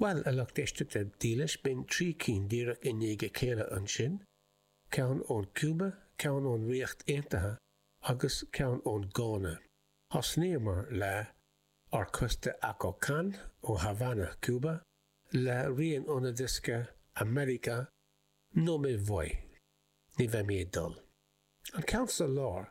Bhuel, a lucht éisteachta dílis, b'in trí cinn díreach i ndiaidh a chéile ansin, ceann ón Cuba, ceann ón Ríocht Aontaithe agus ceann ón Gána. Thosnaíomar le Ar Costa Acokán, ó Havana, Cuba, le rian óna diosca América, No Me Voy, Ní Bheidh Mé ag Dul. An ceann sa lár,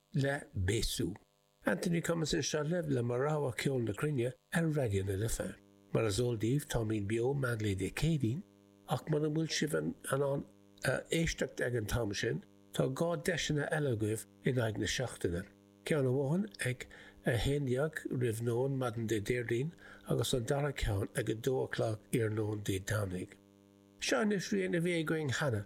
le Bésu. Anthony Cummins anseo libh le mo rogha ceol na cruinne ar Raidió na Life. Mar is eol daoibh táimid beo meánlae Dé Céadaoin, ach muna bhfuil sibh in ann éisteacht ag an t-am sin, tá dhá deiseanna eile agaibh in aghaidh na seachtaine, ceann amháin ag a 11 roimh nóin maidin Dé Déardaoin agus an dara ceann ag 2 a chlog iarnóin Dé Domhnaigh. Seo anois rian a bhí againn cheana